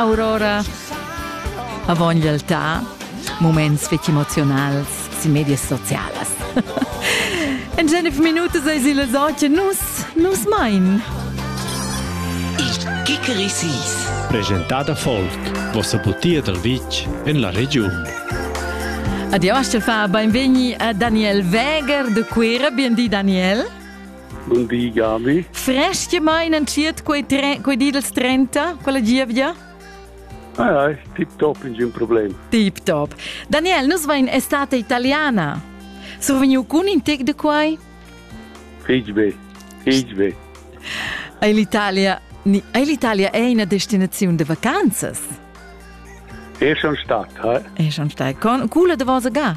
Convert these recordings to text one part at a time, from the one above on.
Aurora. Avon realtà, moments fetg emozionals sin medias socialas. en genef minutas eis il soce nus, nus mein. Il Kikerisis. Presentada Folk, vossa butia dal vitg en la regiun. Adio, Astel fa, benvegni a Daniel Weger de Quera, bien di Daniel. Bun di, Gabi. Fresch che mein entschiet quei, tre, quei di dels 30, quella gievgia? Ai, ai, tip-top, ningun problem. Tip-top. Daniel, nus vain estate italiana. Survegniu cun in tec de quai? Fig be, fig be. Ei l'Italia, ei l'Italia è una destinazione de vacanzas? È schon stat, eh? È schon stat. Con cula de vosa ga?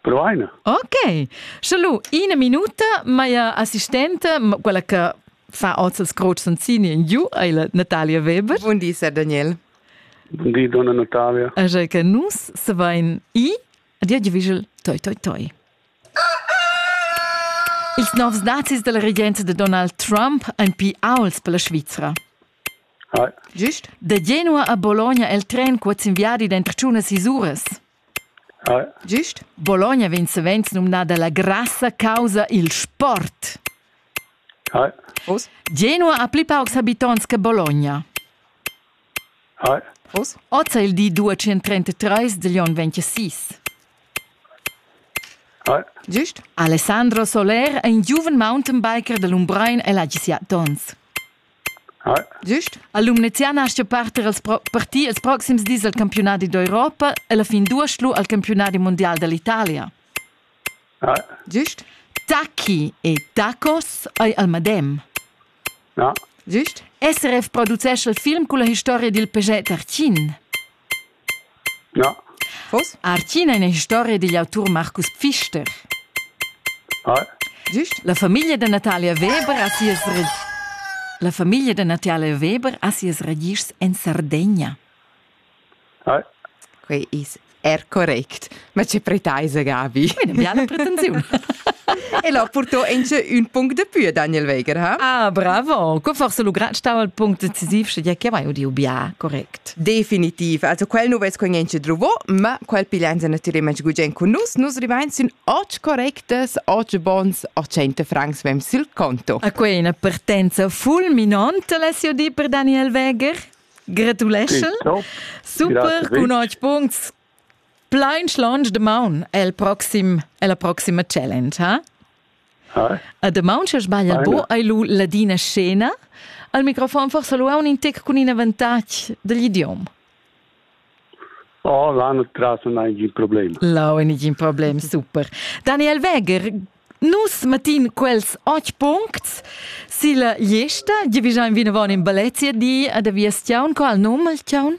Provaina. Ok. Sche lu ina minuta, meia assistente, quella che fa oz il scroc sensini in giu, è la Natalia Weber. Buon di, Sir Daniel. Buon di, donna Natalia. Așa che nus se vain i, a dir vigil, toi, toi, toi. Ils novs dazis della regenza de Donald Trump ein pi auls per la Svizra. Gist? De Genua a Bologna el tren cuoz in viadi dentro ciunas isuras. Gist Bologna vegn savens numnada la grassa causa il sport. Genua ha pli paucs habitonts che Bologna. Oz è il di 233 degl onn 26. Gist Alessandro Soler è in giuven mountainbiker de Lumbrein e l'ha sia tons. Gist ha Lumneziana astga parter als pro partir els proxims dis al campiunadi d'Europa e la fin duas lu al campiunadi mundial dall'Italia. Gist daci e dacos ei al medem. Gist SRF producescha il film culla historia dil PG Tartin. Ja. Vos? Artina ina historia digl autur Marcus Pfister. Hai. Giust? La famiglia da Natalia Weber ha sias La famiglia da Natalia Weber ha sias ragischs en Sardegna. Hai. Quei is er correct. Ma che preteisa Gavi? Una biala pretensiun. e là portò anche un punct de più Daniel Weger, ha? Ah, bravo! Co forse lugrat stava il punct decisiv, sche che mai udiu bia, correct. Definitiv. Also quel nu ves quen anche druvo, ma quel piglianza natürlich manch gugent con nus, nus rivain sin oggi correctes, oggi bons, 800 francs vem sil conto. A quei una partenza fulminante l'ha di per Daniel Weger. Gratuleschel. Super, con 8 punts, Plain schlonch damaun è il proxim è la proxima challenge, ha? Hi. A damaun che sbaglia bo hai lu ladina scena. Al microfon forsa lu un intec cun in avantatg dagl idiom. Oh, là non traso ningun problem. Là ningun problem, super. Daniel Weger, nus matin quels och puncts silla gliesta, di vi già in vinavon in balletia di ad a via stiaun, qual num il tiaun?